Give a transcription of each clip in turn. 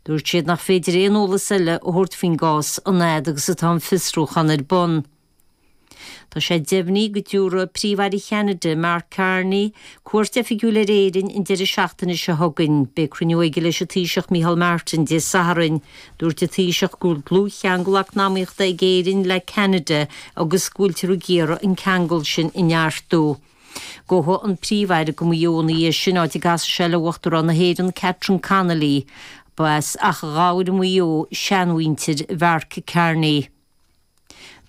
Dúirt siad nach féidir aon eolas eile a thabhairt faoin gcás an fhad agus atá an fiosrúchán ar bun. Tá sé deimhnithe go dtabharfaidh Príomh-Aire Cheanada, Mark Carney, cuairt oifigiúil ar Éirinn an deireadh seachtaine seo chugainn. Beidh cruinniú aige leis an Taoiseach Micheál Martin Dé Sathairn. Dúirt an Taoiseach go bhfuil dlúthcheangal eacnamaíochta ag Éirinn le Ceanada agus go bhfuiltear ag iarraidh an ceangal sin a neartú. Gabhfaidh an Príomh-Aire go Maigh Eo ina dhiaidh sin, áit a gcasfaidh sé le Uachtarán na hÉireann, Catherine Connolly. Ba as Achadh Ghabhair i Maigh Eo seanmhuintir Mhark Carney.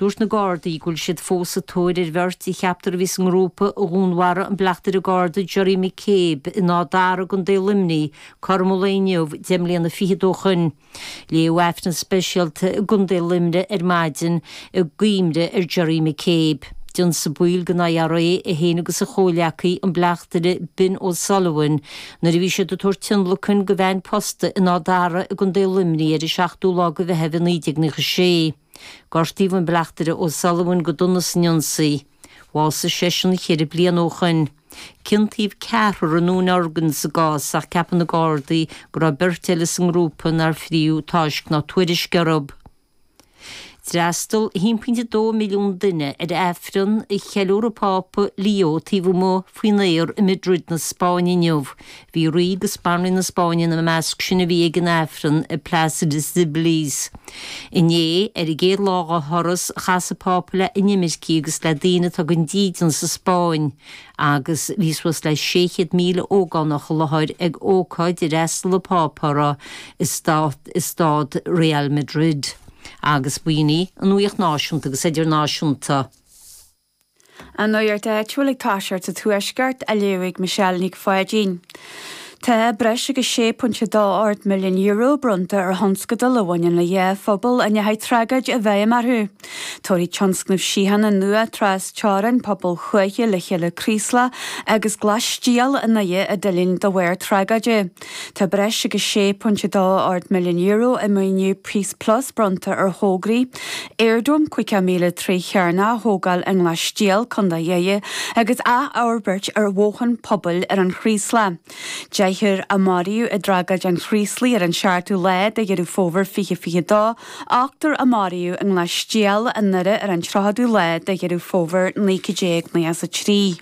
Dúirt na Gardaí go bhfuil siad fós sa tóir ar bheirt a cheaptar a bhí sa ngrúpa a dhúnmharaigh an Bleachtaire Garda Jerry McCabe in Áth Dara i gContae Luimnigh, cothrom an lae inniu, deich mbliana fichead ó shoin. Léadh aifreann speisialta i gContae Luimnigh ar maidin i gcuimhne ar Jerry McCabe. D'ionsaigh baill den IRA é féin agus a chomhghleacaí, an Bleachtaire Ben O'Sullivan, nuair a bhí siad ag tabhairt tionlacain do veain posta in Áth Dara i gContae Luimnigh ar an 7ú lá de Mheitheamh i 1996. Gortaíodh an Bleachtaire O'Sullivan go dona san ionsaí. Bhásaigh seisean ceithre bliana ó shoin. Ciontaíodh ceathrar i ndúnorgain sa gcás ach ceapann na Gardaí go raibh beirt eile sa ngrúpa nár fríodh táisc ná tuairisc orthu. D'fhreastal 1.2 milliún duine ar Aifreann a cheiliúir an Pápa Leo taobh amuigh faoin aer i Madrid na Spáinne inniu. Bhí rí agus banríon na Spáinne ina measc sin a bhí ag an Aifreann i Plaza de Cibeles. Inné, ar an gcéad lá dá thuras, chas an Pápa le inimircigh agus le daoine atá gan dídean sa Spáinn agus bhí suas le 600,000 ógánach i láthair ag ócáid ar fhreastail an Pápa uirthi i staid Real Madrid agus b'in í an nuaíocht náisiúnta agus idirnáisiúnta. An nuacht áitiúil ag toiseacht sa Tuaisceart á léamh ag Michelle Nic Pháidín. Tá breis agus €6.28 milliún bronnta ar thionscadail a bhaineann le dhá phobal a ndeachaigh tragóid i bhfeidhm orthu. Tabharfaidh tionscnamh Síochána nua trasteorann pobail thuaithe le chéile Craoslach agus Glas Stiall i nDoire a d'fhulaing de bharr tragóide. Tá breis agus €6.28 milliún i maoiniú Peace Plus bronnta ar thograí, air dome caoga míle troigh chearnach a thógáil i nGlas-stiall, Co Dhoire, agus athfhorbairt ar bhothán pobail ar an Chraoslach. Deichniúr a maraíodh i dtragóid an Chraoslaigh ar an seachtú lá de Dheireadh Fómhair 2022, ochtar a maraíodh i nGlas-stiall i nDoire ar an tríochadú lá de Dheireadh Fómhair 1993.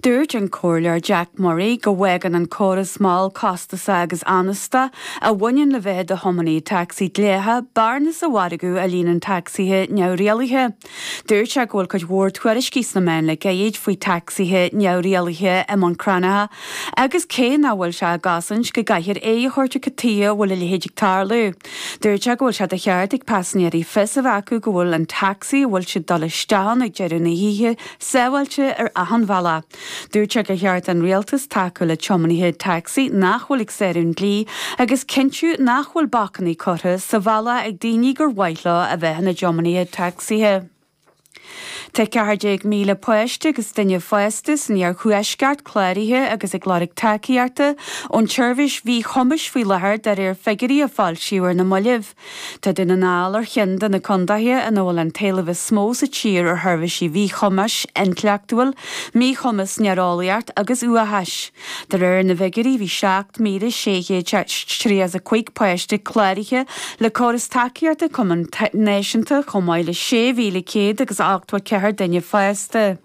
Dúirt an Comhairleoir Jack Murray go bhfágann an córas mall, costasa agus anasta a bhaineann le bheith i do thiománaí tacsaí dleathach bearna sa mhargadh a líonann tacsaithe neamhrialaithe. Dúirt sé go bhfuil cuid mhór tuairiscí sna meáin le gairid faoi tacsaithe neamhrialaithe i mBun Cranncha agus cé nach bhfuil sé á gcosaint go gcaithfear aghaidh a thabhairt ar cad tuige a bhfuil a leithéid ag tarlú, dúirt sé go bhfuil sé de cheart ag paisinéirí fios a bheith acu go bhfuil an tacsaí a bhfuil siad dul isteach ann ag deireadh na hoíche sábháilte ar achan bhealach. Dúirt sé gur cheart don Rialtas tacú le tiománaithe tacsaí nach bhfuil ag sárú an dlí agus cinntiú nach bhfuil bacainní curtha sa bhealach ag daoine gur mhaith leo a bheith ina dtiománaithe tacsaithe. Tá 14,000 páiste agus duine fásta san iarthuaisceart cláraithe agus ag lorg tacaíochta ón tseirbhís mhíchumais faoi láthair de réir figiúirí a foilsíodh ar na mallaibh. Tá Dún na nGall ar cheann de na contaetha ina bhfuil an t-éileamh is mó sa tír ar sheirbhísí mhíchumais intleachtúil, míchumas néareolaíocht agus uathachais. De réir na bhfigiúirí bhí 7,635 páiste cláraithe le córas tacaíochta Cumann Náisiúnta chomh maith le 6,184 duine fásta.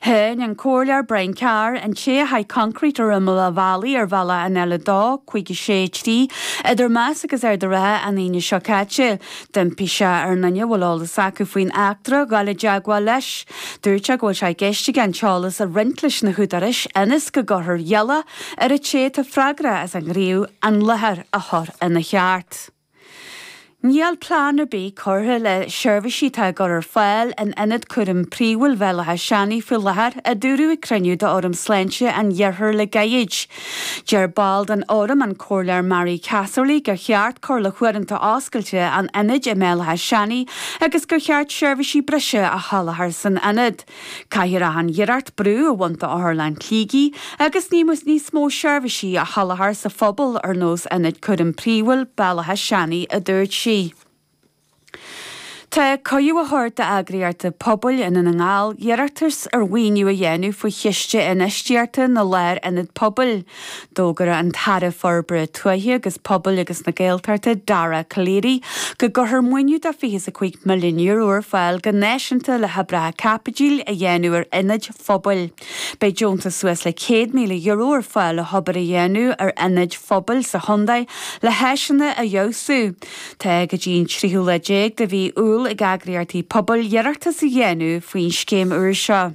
Cháin an Comhairleoir Brian Carr an té a chaith concrete ar imeall a' bhealaigh ar bhealach an L2, 5 6 3, idir Más agus Ard a' Rátha an Aoine seo caite. D'impigh sé ar na daoine a bhfuil eolas acu faoin eachtra a dhul i dteagmháil leis. Dúirt sé go bhfuil sé i gceist aige an t-eolas a roinnt leis na húdaráis ionas go gcuirfear iallach ar a' té atá freagrach as an ghníomh an láthair a chur ina cheart. Níl plean ar bith curtha le seirbhísí atá á gcur ar fáil in Ionad Cúraim Phríomhúil Bhéal Átha Seanaidh faoi láthair, a dúradh ag cruinniú d'Fhóram Sláinte an Iarthair le gairid. Deir ball den Fhóram, an Comhairleoir Marie Casserly, gur cheart cur le huaireanta oscailte an Ionaid i mBéal Átha Seanaidh agus gur cheart seirbhísí breise a sholáthar san Ionad. Caithfear achan iarracht brú a bhaint d'Otharlann Shligigh agus ní mór níos mó seirbhísí a sholáthar sa phobal ar nós Ionad Cúraim Príomhúil Bhéal Átha Seanaidh a dúirt sí. Tá cuireadh á thabhairt d'eagraíochtaí pobail i nDún na nGall iarratas ar mhaoiniú a dhéanamh faoi Chiste Infheistíochta na Lárionad Pobail, D'fhógair an tAire Forbartha Tuaithe agus Pobail agus na Gaeltachta, Dara Calleary, go gcuirfear maoiniú de fiche is a cúig milliún euro ar fáil go náisiúnta le hoibreacha caipitil a dhéanamh ar ionaid phobail. Beidh deontas suas le céad míle euro ar fáil le hobair a dhéanamh ar ionaid phobail sa chontae le háiseanna a fheabhsú. Tá go dtí an tríú lá déag de mhí Iúil ag eagraíochtaí pobail iarratas a dhéanamh faoin scéim úr seo.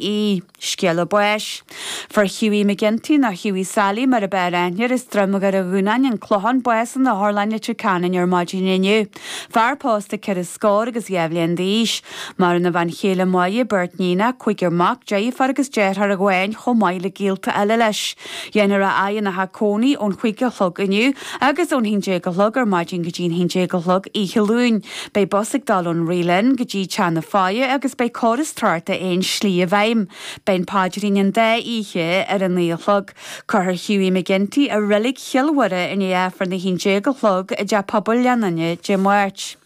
ie, scéala báis. Fuair Hughie McGinty nó Hughie Sally mar ab fhearr aithne air as Droim Dhoire Dhúnáin An Clochán bás in Otharlann Leitir Ceanainn ar maidin inniu. Fear pósta ceithre scór agus dhá bhliain d'aois. Maireann a bhean chéile Máire, beirt iníon, cúigear mac, deirfiúr agus deartháir amháin chomh maith le gaolta eile leis. Dhéanfar é a fhaire ina theach cónaí ón chúig a chlog inniu agus ón haon déag a chlog ar maidin go dtí an haon déag a chlog oíche Luain. Beidh bus ag dul ón Reelin go dtí teach na faire agus beidh córas tráchta aon slí i bhfeidhm. Beidh an paidrín an dá oíche ar a naoi a chlog. Cuirfear Hughie McGinty i Reilig Chill Mhuire i ndiaidh Aifreann a haon déag a chlog i dTeach Pobail Ghleann Fhinne Dé Máirt.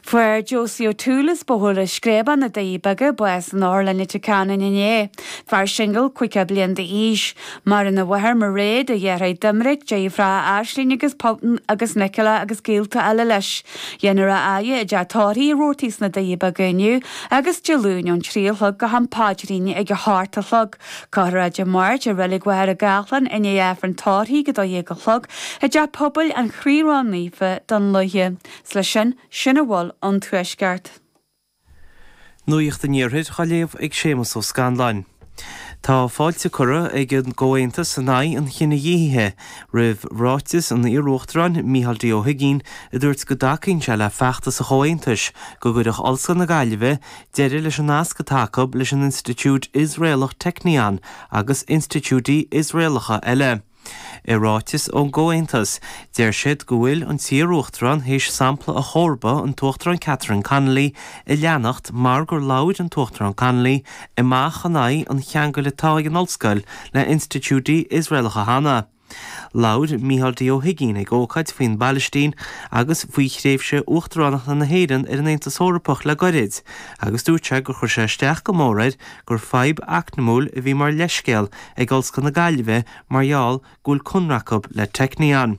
Fuair Josie O'Toole as Bóthar an Screabáin, na Doirí Beaga bás in Otharlann Leitir Ceanainn inné, fear singil, caoga bliain d'aois. Maireann a mháthair, Mairéad, a dheartháir Doimnic, deirfiúr Aisling agus Polton agus Nicola agus gaolta eile leis. Dhéanfar é a fhaire i dteach tórraimh Roarty's sna Doirí Beaga inniu agus Dé Luain ón trí a chlog go ham paidrín ag a hocht a chlog. Cuirfear é Dé Máirt i Reilig Mhachaire Gathlán i ndiaidh Aifreann tórraimh ag 12 a chlog i dTeach Pobail an Chroí Ró-Naofa Dún Lúiche. Is leis sin sin a bhfuil ón Tuaisceart. Nuacht an Iarthair á léamh ag Séamus Ó Scanláin. Tá fáilte curtha ag an gComhaontas in Aghaidh an Chinedhíothaithe roimh ráiteas an iarUachtaráin Micheál D. Ó hUigínn a dúirt go dtacaíonn sé le feachtas an Chomhaontais go gcuirfeadh Ollscoil na Gaillimhe deireadh leis an nasc atá acu leis an institiúid Iosraelach Technion agus institiúidí Iosraelacha eile. I ráiteas ón gComhaontas, deir siad go bhfuil an t-iaruachtarán théis sampla a chomharba, an tUachtarán Catherine Connolly, a leanacht mar gur labhair an tUachtarán Connolly amach in aghaidh an cheangail atá ag an ollscoil le hinstitiúidí Iosraelacha cheana. Labhair Micheál D. Ó hUigínn ag ócáid faoin bPailistín agus faoi thréimhse uachtaránachta na hÉireann ar an Aontas Eorpach le gairid agus dúirt sé gur chuir sé isteach go mór air gur fadhb eacnamúil a bhí mar leithscéal ag Ollscoil na Gaillimhe mar gheall go bhfuil conradh acu le Technion.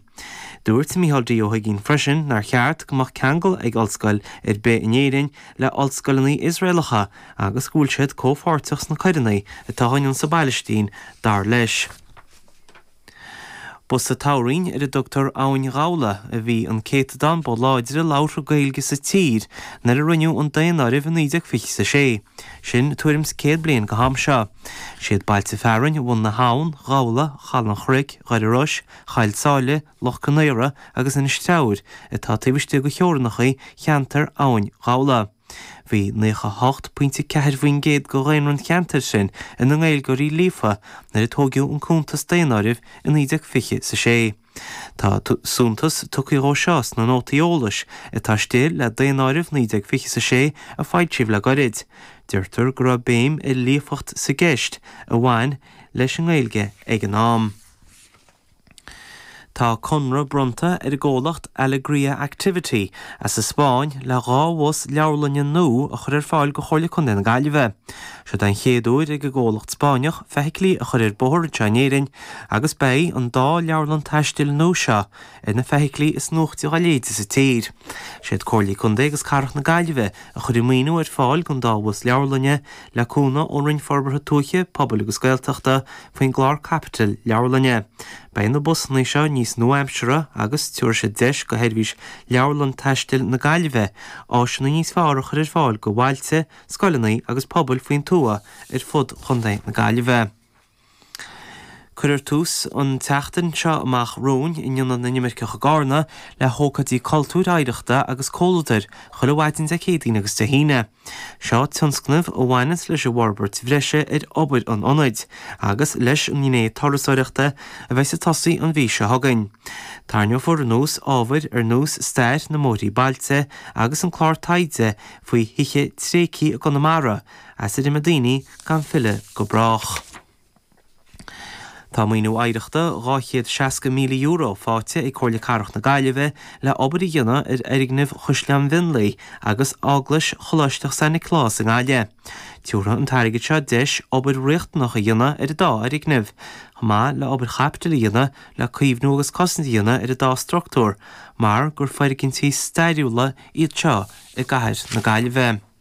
Dúirt Micheál D. Ó hUigínn freisin nár cheart go mbeadh ceangal ag ollscoil ar bith in Éirinn le ollscoileanna Iosraelacha agus go bhfuil siad comhpháirteach sna coireanna atá á ndéanamh sa bPailistín, dar leis. Ba sa toghroinn ar a dtugtar Abhainn Ghabhla a bhí an céatadán ba láidre labhartha Gaeilge sa tír nuair a rinneadh an daonáireamh i 1926, sin tuairim's céad bliain go ham seo. 'Siad bailte fearainn Bhun na hAbhann, Ghabhla, Chaladh an Chnoic, Dhoire Iorrais, Choill Sáile, Loch Conaortha agus Inis Treabhair atá taobh istigh go theorannacha cheantar Abhainn Ghabhla. Bhí 98 pointe 4 faoin gcéad de dhaonra an cheantair sin ina nGaeilgeoirí líofa nuair a tóigeadh an cuntas daonáirimh i 1926. Tá suntas tugtha dhó seo sna nótaí eolais atá istigh le daonáireamh 1926 a foilsíodh le goirid. Deirtear go raibh béim ar líofacht sa gceist a bhain leis an nGaeilge ag an am. Tá conradh bronnta ar an gcomhlacht Alegria Activity as an Spáinn le dhá bhus leabharlainne nua a chur ar fáil do Chomhairle Contae na Gaillimhe. Seod é an chéad uair ag an gcomhlacht Spáinneach feithiclí a chur ar bóthar anseo in Éirinn agus beidh an dá leabharlann taistil nua seo ar na feithiclí is nuaichte dhá leithéid sa tír. Is iad Comhairle Contae agus Cathrach na Gaillimhe a chuir an maoiniú ar fáil don dá bhus leabharlainne le cúnamh ón Roinn Forbartha Tuaithe, Pobail agus Gaeltachta faoin gclár caipitil leabharlainne. Beidh na busanna seo níos nua-aimseartha agus tabharfaidh siad deis do sheirbhís Leabharlann Taistil na Gaillimhe áiseanna níos fearr a chur ar fáil do bhailte, scoileanna agus pobail faoin tuath ar fud Chontae na Gaillimhe. Cuirfear tús an tseachtain seo amach romhainn in Ionad na nImirceach i gCarna le hócáidí cultúir, oidhreachta agus comhludair chuile mhaidin Dé Céadaoin agus Dé hAoine. Seo tionscnamh a bhaineanns leis an bhforbairt bhreise ar obair an Ionaid agus leis an ngné turasóireachta a bheas ag tosaí an mhí seo chugainn. Tairneofar anuas ábhair ar nós stair na mbóithrí bailte agus an clár taighde faoi Thithe Tréigthe i gConamara, as a d'imigh daoine gan filleadh go brách. Tá maoiniú oidhreachta €260,000 faighte ag Comhairle Cathrach na Gaillimhe le obair a dhéanamh ar fhoirgnimh Chaisleán Mhionlaigh agus Eaglais Choláisteach San Nioclás i nGaillimh. Tiúrfaidh an t-airgead seo deis obair riachtanach a dhéanamh ar an dá fhoirgneamh, chomh maith le obair chaipitil a dhéanamh le caomhnú agus cosaint a dhéanamh ar an dá struchtúr mar gur foirgintí stairiúla iad seo i gCathair na Gaillimhe.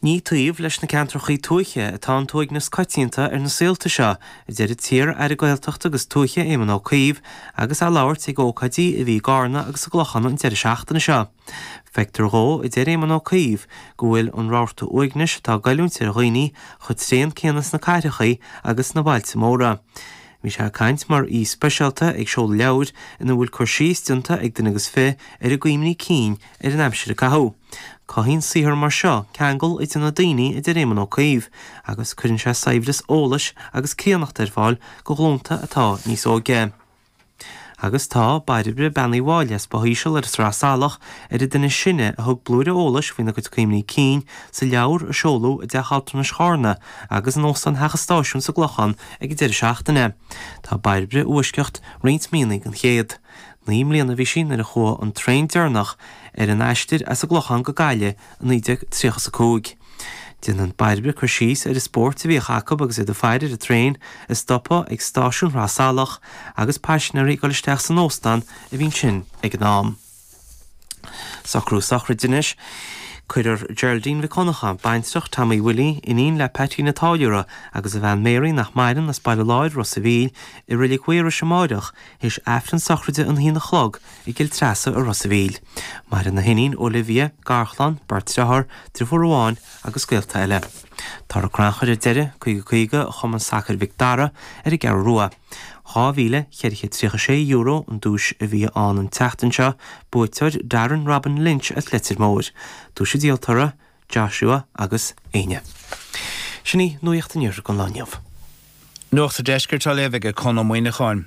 Ní taobh leis na ceantracha tuaithe atá an t-uaigneas coitianta ar na saolta seo, a deir an t-iar-Aire Gaeltachta agus Tuaithe Éamon Ó Cuív, agus é ag labhairt ag ócáidí a bhí i gCarna agus sa gClochán an deireadh seachtaine seo. Feictear dhó, a deir Éamon Ó Cuív, go bhfuil an rabharta uaignis atá ag goilliúint ar dhaoine chomh tréan céanna sna cathracha agus sna bailte móra. Bhí sé ag caint mar aoi speisialta ag seoladh leabhair ina bhfuil cur síos déanta ag duine agus fiche ar a gcuimhní cinn ar an aimsir a caitheadh. Cothaíonn saothar mar seo ceangal idir na daoine, a deir Éamon Ó Cuív, agus cuireann sé saibhreas eolais agus críonnacht ar fáil do ghlúnta atá níos óige. Agus tá Bairbre Bean Uí Mháille as Both Íseal ar an Sraith Salach ar an duine is sine a thug blúire eolais faoina gcuid cuimhní cinn sa leabhar a seoladh i dTeach Altranais Charna agus in Óstán Theach an Stáisiúin sa gClochán ag an deireadh seachtaine. Tá Bairbre i bhfoisceacht roinnt míonnaí den chéad. Naoi mbliana a bhí sí nuair a chuaigh an traein deireanach ar an aistir as an gClochán go Gaillimh i 1935. Déanann Bairbre cur síos ar an spórt a bhíodh acu agus iad ag faire ar an traein ag stopadh ag stáisiún Shraith Salach agus paisnéaraí ag dul isteach san óstán a bhí ansin ag an am. Socruithe sochraide anois. Cuirfear Geraldine Mhic Dhonnacha, baintreach Tommy Willie, iníon le Peaitín a' Táilliúra agus a bhean Mary, nach maireann, as Baile Láir, Ros a' Mhíl, i reilig Mhaorais amáireach, théis aifreann sochraide an haon a chlog i gCill Treasa i Ros a' Mhíl. Maireann a hiníon, Olivia, garchlann, beirt driothár, driofúr amháin agus gaolta eile. Torthaí crannchuir ar deireadh, 50 50 Chumann Sacair Mhic Dara ar an gCeathrú Rua. €2,436 an duais a bhí ann an tseachtain seo, buaiteoir Darren Robin Lynch as Leitir Móir. Duais an díoltóra. Joshua agus Áine. Sin í Nuacht an Iarthair don lá inniu. Nuacht an Deiscirt á léamh aige Conn Ó Muíneacháin.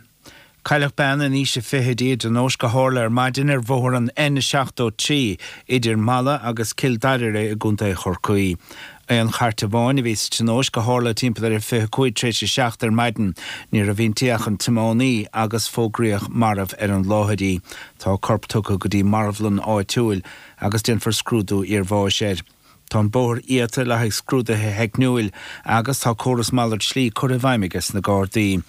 Cailleadh bean in aois a fichidí i dtionóisc a tharla ar maidin ar bhóthar an N73 idir Mala agus Cill Dairire i gContae Chorcaí. Aon chairt amháin a bhí sa tionóisc a tharla timpeall ar a 25 tar éis a seacht ar maidin. Ní raibh inti ach an tiománaí agus fógraíodh marbh ar an láthair í. Tá a corp tugtha go dtí marbhlann áitiúil. agus déanfar scrúdú iarbháis air. Tá an bóthar iata le haghaidh scrúdaithe theicniúla agus tá córas malairt slí curtha i bhfeidhm aige sna Gardaí.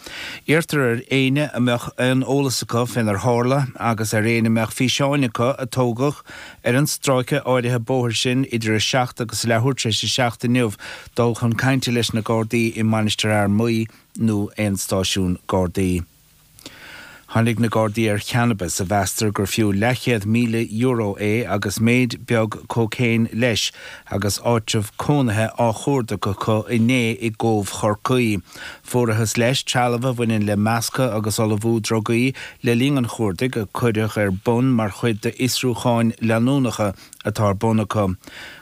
Iarrtar ar éinne a mbeadh aon eolas acu fénar tharla agus ar éinne a mbeadh físeáin acu a tógadh ar an stráice áirithe bóthair sin idir 7 agus leathuair tar éis a seacht inniu dul chun cainte leis na Gardaí i Mainistir Fhear Maí nó aon stáisiún Gardaí. Tháinig na Gardaí ar channabas a mheastar gur fiú leathchéad míle euro é agus méid beag cócaein leis agus áitreabh cónaithe á chuardach acu inné i gCóbh Chorcaí. Fuarathas leis trealamh a bhaineann le meascadh agus ullmhú drugaí le linn an chuardaigh a cuireadh ar bun mar chuid d'fhiosrúcháin leanúnacha atá ar bun acu.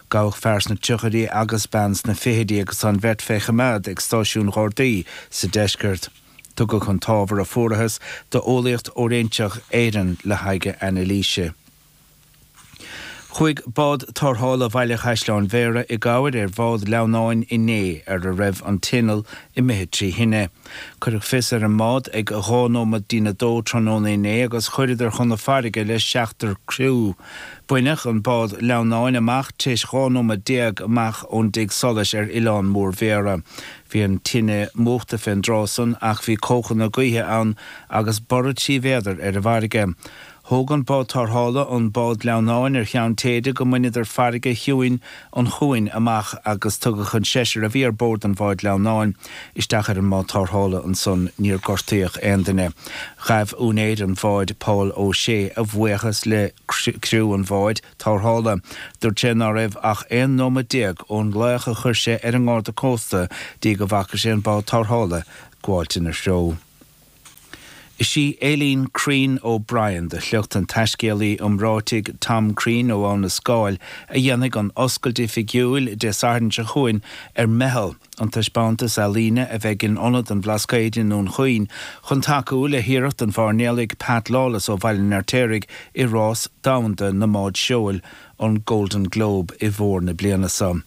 Gabhadh fear sna tríochaidí agus bean sna fichidí agus tá an bheirt fé choimeád ag stáisiún Ghardaí sa deisceart. Tugadh an t-ábhar a fuarathas do Eolaíocht Fhóiréinseach Éireann le haghaidh anailíse. Chuaigh bád tarrthála Bhaile Chaisleáin Bhéarra i gcabhair ar bhád leamhnála inné ar a raibh an t-inneall imithe trí thine. Cuireadh fios ar an mbád ag dhá nóimead dtí'n a dó tráthnóna inné agus chuireadar chun na farraige le seachtar criú. Baineadh an bád leamhnála amach tréis dhá nóimead déag amach ón dtigh solais ar Oileán Mór Bhéarra. Bhí an tine múchta fén dtráth san ach bhí cóchana gaoithe ann agus borradh trí mhéadar ar an bhfarraige. Thóg an bád tarrthála an bád gleannáin ar cheann téide go mbaineadar farraige chiúin an chuain amach agus tugadh an seisear a bhí ar bord an bháid gleannáin isteach ar an mbád tarrthála ansan níor gortaíodh aon duine. Ghabh úinéir an bháid Paul O'Shea a bhuíochas le criú an bháid tarrthála. Dúirt sé ná raibh ach 11 nóiméad ón nglaoch a chuir sé ar an nGarda Cósta dtí go bhfaca sé an bád tarrthála ag gabháilt ina threo. Is í Aileen Crean O'Brien de shliocht an taiscéalaí iomráitigh Tom Crean ó Abha na Scáil a dhéanfaidh an oscailt oifigiúil Dé Sathairn seo chugainn ar Meitheal, an taispeántas ealaíne a bheidh in Ionad an Bhlascaoid i nDún Chaoin chun tacú le hiarracht an mhairnéalaigh Pat Lawless ó Bhaile an Fheirtéaraigh i rás domhanda na mbád seoil, an Golden Globe, i bhfómhar na bliana seo.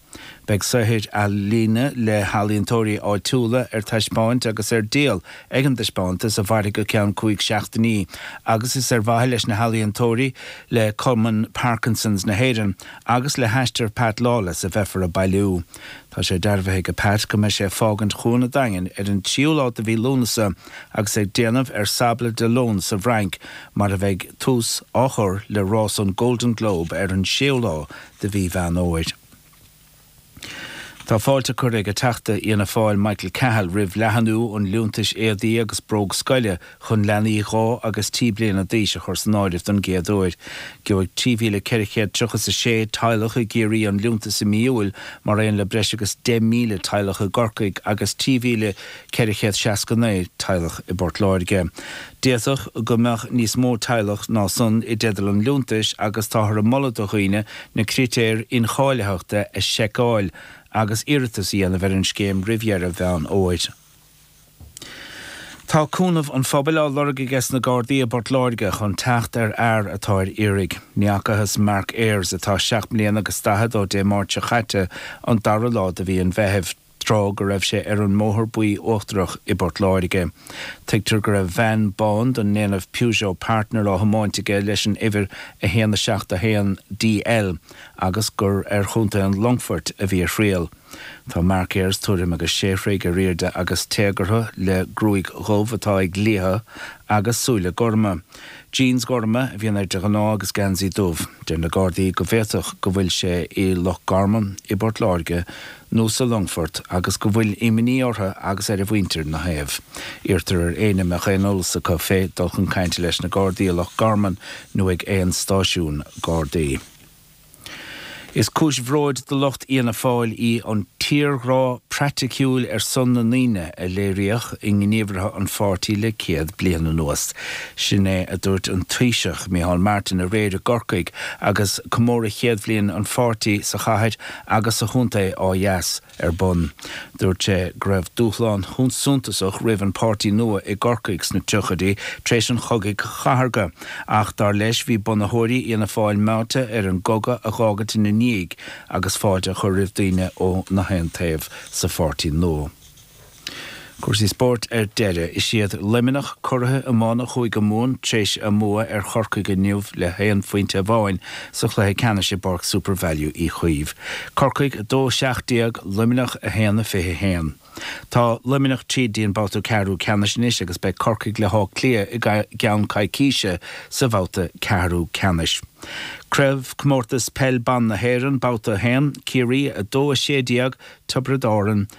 Beidh saothair ealaíne le healaíontóirí áitiúla ar taispeáint agus ar díol ag an dtaispeántas, a mhairfidh go ceann cúig seachtainí, agus is ar mhaithe leis na healaíontóirí, le Cumann Parkinsons na hÉireann agus le haistear Pat Lawless a bheifear ag bailiú. Tá sé dearbhaithe ag Pat go mbeidh sé ag fágaint Chuan an Daingin ar an tríú lá de mhí Lúnasa agus ag déanamh ar Sables d'Olonne sa bhFrainc mar a bheidh tús á chur le rás an Golden Globe ar an séú lá de mhí Mheán Fhómhair. Tá fáilte curtha ag an Teachta Fhianna Fáil Michael Cahill roimh leathnú an liúntais éadaí agus bróg scoile Chun leanaí dhá agus trí bliana d'aois a chur san áireamh don gcéad uair, gheobhaidh 3,436 teaghlach i gCiarraí an liúntas i mí Iúil mar aon le breis agus 10,000 teaghlach i gCorcaigh agus 3,469 teaghlach i bPort Láirge. D'fhéadfadh go mbeadh níos mó teaghlach ná san i dteideal an liúntais agus táthar ag moladh do dhaoine na critéir incháilitheachta a sheiceáil agus iarratas a dhéanamh ar an scéim roimh dheireadh Mheán Fhómhair. Tá cúnamh an phobail á lorg aige sna Gardaí i bPort Láirge chun teacht ar fhear atá ar iarraidh. Ní fheacathas Mark Ayres, atá seacht mbliana agus daichead, ó Dé Máirt seo caite, an dara lá de mhí an Mheithimh, tráth go raibh sé ar an mBóthar Buí Uachtarach i bPort Láirge. Tuigtear go raibh veain bán den ndéanamh Peugeot Partner á thiomáint aige leis an uimhir 171 DL agus gur ar Chontae an Longfoirt a bhí a thriall. Tá Mark Ayres tuairim agus sé throigh ar airde agus téagartha le gruaig dhubh atá ag liathadh agus súile gorma. Jeans gorma a bhíonn air de ghnáth agus geansaí dubh. Deir na Gardaí go bhféadfadh go bhfuil sé i Loch Garman, i bPort Láirge nó sa Longfort agus go bhfuil imní orthu agus ar a mhuintir ina thaobh. Iarrtar ar éinne a mbeadh aon eolas acu fé dul chun cainte leis na Gardaí i Loch Garman nó ag aon stáisiún Gardaí. Is cúis bhróid do lucht Fhianna Fáil í an tírghrá praiticiúil ar son na ndaoine a léiríodh i ngníomhartha an pháirtí le céad bliain anuas. Sin é a dúirt an Taoiseach, Micheál Martin aréir i gCorcaigh agus comóradh chéad bhliain an pháirtí sa chathair agus sa chontae á ar bun. Dúirt sé go raibh dúshlán suntasach roimh an páirtí nua i gCorcaigh sna tríochaidí tar éis an chogaidh chathartha ach, dar leis, bhí bunaitheoirí Fhianna Fáil meáite ar an gcogadh a dh'fhágaint ina ndiaidh agus fáilte a chur roimh daoine ó na haon taobh sa pháirtí nua. Cúrsaí spóirt ar deireadh. Is iad Luimneach curaidh iomána Chúige Mumhan tréis a mbua ar Chorcaigh inniu le haon phointe amháin sa chluiche ceannais i bPáirc SuperValu Uí Chaoimh. Corcaigh 2, 17, Luimneach 1, 21. Tá Luimneach tríd go dtí an babhta ceathrú ceannais anois agus beidh Corcaigh le hÁth Cliath i gceann coicíse sa bhabhta ceathrú ceannais. Craobh Comórtas Peil Ban na hÉireann, Babhta 1, Ciarraí 2, 16, Tiobraid Árann 1.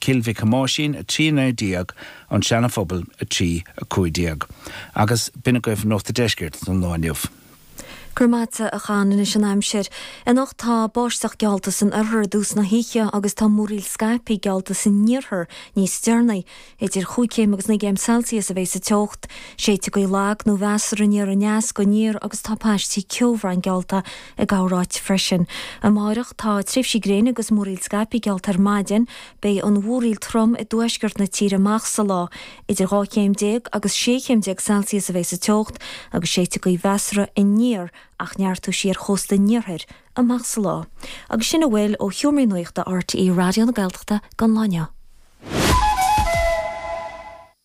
Cill Mhic Thomáisín 3, 19, An Seana-Phobal 3, 15, agus b'in agaibh Nuacht an Deiscirt don lá inniu. Go raibh maith agat a Chon, anois an aimsir. Anocht tá báisteach geallta san oirthear i dtús na hoíche agus tá múraíl scaipthe geallta san iarthar níos deireanaí. Idir chúig chéim agus naoi gcéim Celsius a bheidh sa teocht. Séidfidh gaoth lag nó mheasartha aniar aneas go aniar agus tá paistí ceomhráin geallta i gcorráit freisin. Amárach tá tréimhsí gréine agus múraíl scaipthe geallta ar maidin. Beidh an mhúraíl trom i dtuaisceart na tíre amach sa lá. Idir dhá chéim déag agus sé chéim déag Celsius a bheidh sa teocht agus séidfidh gaoth mheasartha aniar a neartós sí ar chósta an iarthair amach sa lá. Agus sin a bhfuil ó sheomra nuachta RTÉ Raidió na Gaeltachta don lá inniu.